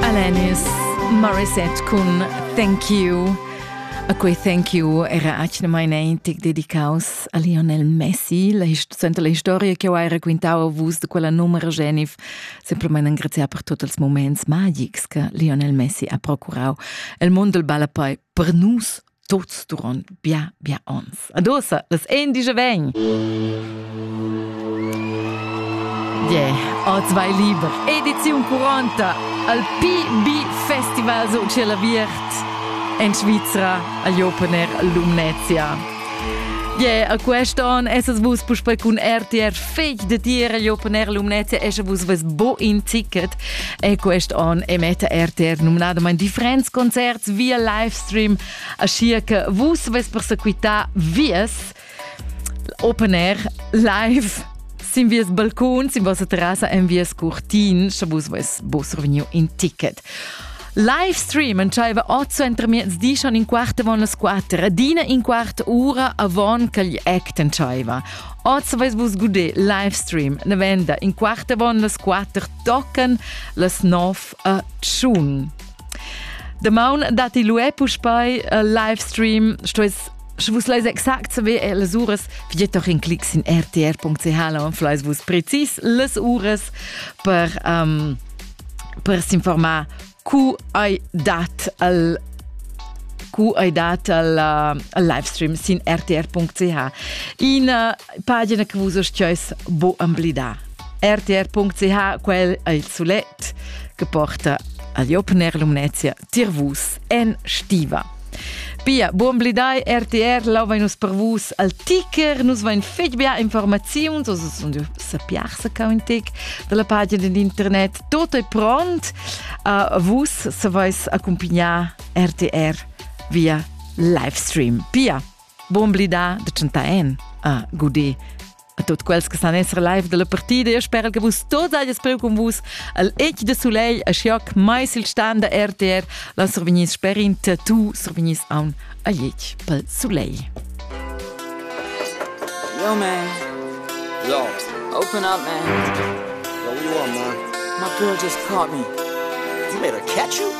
Alanis Morissette cun Thank You. A quei thank you era atgnamain eintic dedicaus a Lionel Messi, la suenter la historia che ho hai raquintau a vus de quella numera Genif, semplamain engraziar per tots els moments magics che Lionel Messi ha procurau. El mond del balla poi per nus tuts duron bia bia ons. Adosa, las ein dice ven. Yeah, oz vai liber. Edizion 40 al PB Festival so c'è la viert in Svizzera agli Opener Lumnezia. Yeah, a quest'on esas vus puspei cun RTR feg de tier agli Opener Lumnezia esce vus ves bo in ticket e quest'on emetta RTR nominadamente differents concerts via live stream, aschia che vus vess persequitar vies open air live sin vies balcon, sin vossa terrassa en vies curtin, sche vus vess vos survegniu in ticket. Live stream entscheiva 8 entermiezdi schon in quart avon las 4, adina in quart ura avon ch'igl act entscheiva. Oz vais vus guder live stream. Ne venda in quart avon las 4 tochen las 9 a tschun. Damaun datti luè puspei uh, livestream, stues Sche vus leis exakt saber eh, las uras, figet doch in clic sin rtr.ch, dann vielleicht vus präzis las uras per, um, per s'informar cu hai dat al cu hai dat al, uh, al livestream sin rtr.ch. In uh, pagina che vus stueis bo emblidar. rtr.ch quel è il sulet che porta agli Open Air Lumnezia tirvus en stiva. Pia, buon blidai RTR, lova nus per vus al ticker, nus vain fetg bia informaziuns, also sunt sapiarsa ca un tic dalla pagina d'internet, tutto è pront, uh, vus se vais accompagnar RTR via livestream. Pia, Buon blidà de tschentà en, ah, gudé, a tutti quelli che sanno essere live della partita. Io spero che vus tots aies preu con vus al Ec de Soleil a Schioc, mais il stand da RTR. La survignis sperint, tu survignis a un Aiec pel Soleil. Yo man, yo, open up man. Yo, you are man. My girl just caught me. You made her catch you?